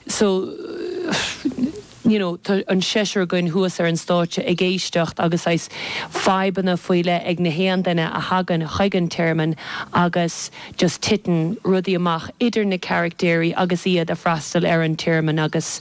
so you know tá an seisear againn thuas ar an stáitse ag éisteacht agus saghas fadhbanna faoi leith ag nach aon duine a thagann chuig an tearmann agus just titeann rudaí amach idir na caractéirí agus iad a' freastal ar an tearmann agus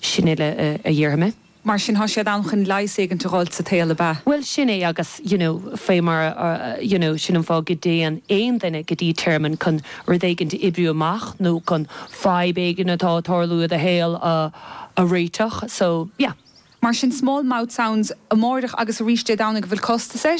sin uile a dhéarfaidh mé. Mar sin thá siad ann chun leigheas éigint a dh'fháilt sa tsaol, ab ea? Bhuel, sin é agus, you know, faoi mar a, you know, sin an fáth go dtéann aon duine go dtí tearmann, chun rud éigint a oibriú amach nó chun fadhb éigin atá ag tarlú i do shaol a, a réiteach. So, yeah. Mar sin, small mouth sounds amárach agus arís Dé Domhnaigh, an bhfuil costas air?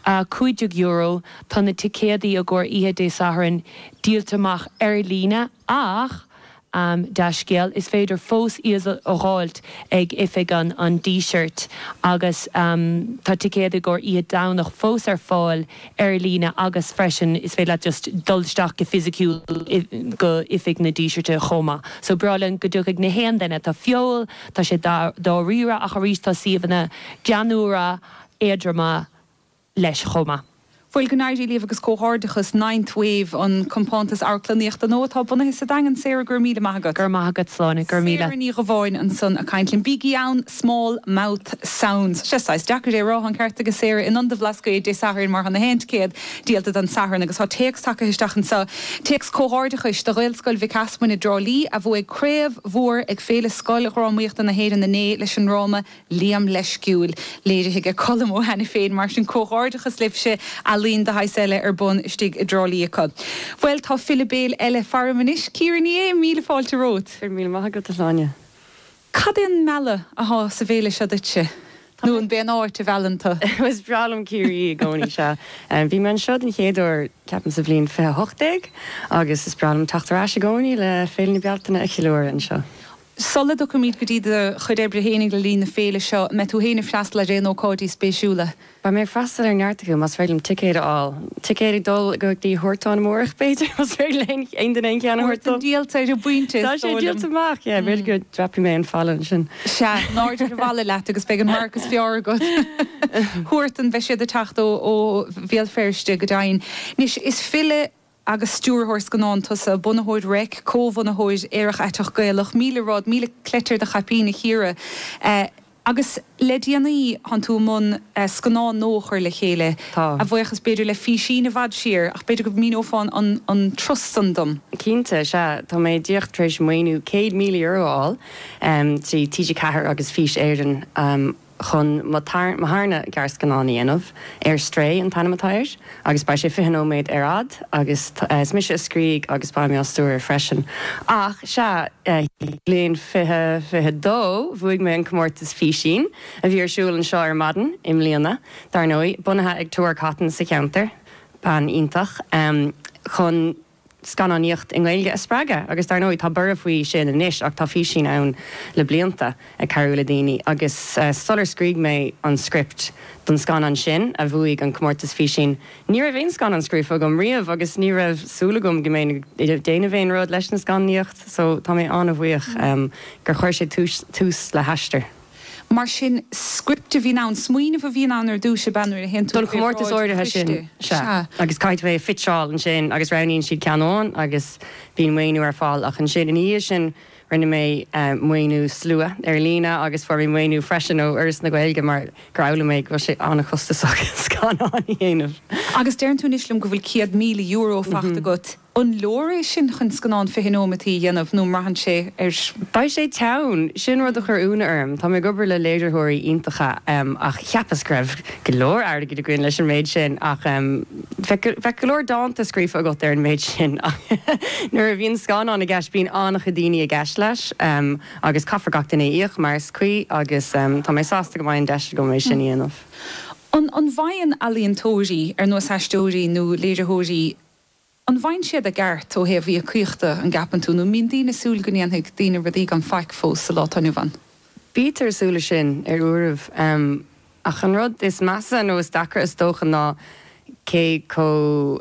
€15. Tá na ticéadaí i gcomhair oíche Dé Sathairn díolta amach ar líne ach An dea-scéal, is féidir fós iad a dh'fháilt ag oifig an an Dísirt agus tá ticéid i gcomhair oíche Domhnach fós ar fáil ar líne agus freisin is féidir leat just dul isteach go fisiciúil go oifig na Dísirte chomh maith. So ba bhreá linn go dtiocfadh nach aon duine. Tá feoil, tá sé dáiríre ach arís tá suíomhanna greannmhara, éadroma. leis chomh maith. Bhuel go n-éirí libh agus comhghairdeachas Ninth Wave, an complacht amharclannaíochta nua atá bunaithe sa Daingean. Sarah, go raibh míle maith agat. Go raibh maith agat, a Shláine, go raibh míle. Sarah Ní Dhubháin ansan ag caint linn. Bígí ann, Small Mouth Sounds. Sea, saghas deacair é a rá, tá an ceart agat Sarah, in Ionad an Bhlascaoid Dé Sathairn mar tá na ticéid díolta don Satharn agus tá téacs tagtha isteach anso, téacs comhghairdeachais do Ghaelscoil Mhic Easmainn i dTrá Lí a bhuaigh craobh mhór ag Féile Scoildrámaíochta na hÉireann inné leis an ndráma Liam Leisciúil léirithe ag Colm Ó hAiniféin, mar sin, comhghairdeachas libhse! Ealaín de shaghas eile ar bun istigh i dTrá Lí acu. Bhuel, tá file béil eile faram anois, Ciara Ní É, míle fáilte romhat! Go raibh míle maith agat, a Shláine! Cad é an mealladh atá sa bhféile seo duitse? Nó ab é an áit a mheallann tú? Is breá liom Ciarraí i gcónaí, sea. Bhí mé anseo den chéad uair, ceapaim, sa bhliain fiche a hocht déag, agus is breá liom teacht ar ais i gcónaí le Féile na Bealtaine a cheiliúradh anseo. Sula dtiocfaimid go dtí do chuid oibre féinig le linn na féile seo, an mbeidh tú féin ag freastal ar aon ócáidí spéisiúla? Beidh mé ag freastal ar neart acu, más féidir liom ticéad a fháil. Ticéad ag dul go dtí Huartan amárach, b'fhéidir, más féidir le aon duine aon cheann a thabhairt dom? Huartan díolta ar an bpointe, is dóigh liom. Tá sé díolta amach, yeah. B'fhéidir go dreapfaidh mé an falla ansin. Sea, ná dein ach balla leat agus beidh an radharc is fearr agat. Huartan, beidh siad ag teacht ó Bhéal Feirste, go deimhin. Anois, is file agus stiúrthóir scannán tusa, bunaitheoir Reic, comhbhunaitheoir Aerach Aiteach Gaelach, míle rud, míle cleite ar do chaipín a Chiara, agus le déanaí tánn tú i mbun scannán nua a chur le chéile, a bhuíochas b'fhéidir le Físín i bhfad siar, ach b'fhéidir go míneofá an turas san dom? Cinnte, sea, tá mé díreach tar éis maoiniú €100,000 a fháil trí TG4 agus Fís Éireann, chun mo tharna gearrscannán a dhéanamh Stray an t-ainm atá air agus beidh sé fiche nóiméad ar fhad agus is mise a scrígh agus beidh mé á stiúradh freisin ach sea, i mbliain fiche fiche dó bhuaigh mé an comórtas Físín a bhí ar siúl anseo ar maidin i mbliana dar ndóigh, bunaithe ag Tor Cotton sa cheantar, bean iontach, chun. scannánaíocht i nGaeilge a spreagadh agus dar ndóigh tá borradh faoi sin anois ach tá Físín ann le blianta ag cabhrú le daoine agus sular scrígh mé an script don scannán sin a bhuaigh an comórtas Físín ní raibh aon scannán scríofa agam riamh agus ní raibh súil agam go mbeinn ag déanamh aon rud leis an scannánaíocht so tá mé an-bhuíoch gur chuir sé tús le haistear. Mar sin, script a bhíonn ann, smaoineamh a bhíonn ann ar dtúis ab ea nuair a théann tú chuig bhráid an choiste. Don chomórtas áirithe sin, sea. Agus caithfidh tú é a phitseáil ansin agus roghnaíonn siad ceann amháin agus bíonn maoiniú ar fáil ach ansin ina dhiaidh sin rinne mé maoiniú slua ar líne agus fuair mé maoiniú freisin ó Fhoras na Gaeilge mar gur fhoghlaim mé go bhfuil sé an-chostasach scannáin a dhéanamh. Agus deireann tú anois liom go bhfuil €100,000 faighte agat. An leor é sin chun scannán 20 nóimeataí a dhéanamh nó an mbraitheann sé ar. Beidh sé teann! Sin rud a chuir ionadh orm. Tá mé ag obair le léiritheoirí iontacha ach cheapas go raibh go leor airgid againn leis an méid sin ach bheadh go leor dánta scríofa agat ar an méid sin ach nuair a bhíonn scannán i gceist bíonn an-chuid daoine i gceist leis agus caithfidh gach duine a íoc mar is cuí agus tá mé sásta go mbeidh an deis agam é sin a dhéanamh. An bhfaigheann ealaíontóirí, ar nós aisteoirí nó léiritheoirí, An bhfaigheann siad a gceart ó thaobh íocaíochta, an gceapann tú, nó an mbíonn daoine ag súil go ndéanfaidh daoine rudaí gan faic fós sa lá atá inniu ann? Bítear ag súil leis sin, ar uairibh. Ach an rud is measa, nó is deacra is dócha, ná cé chomh.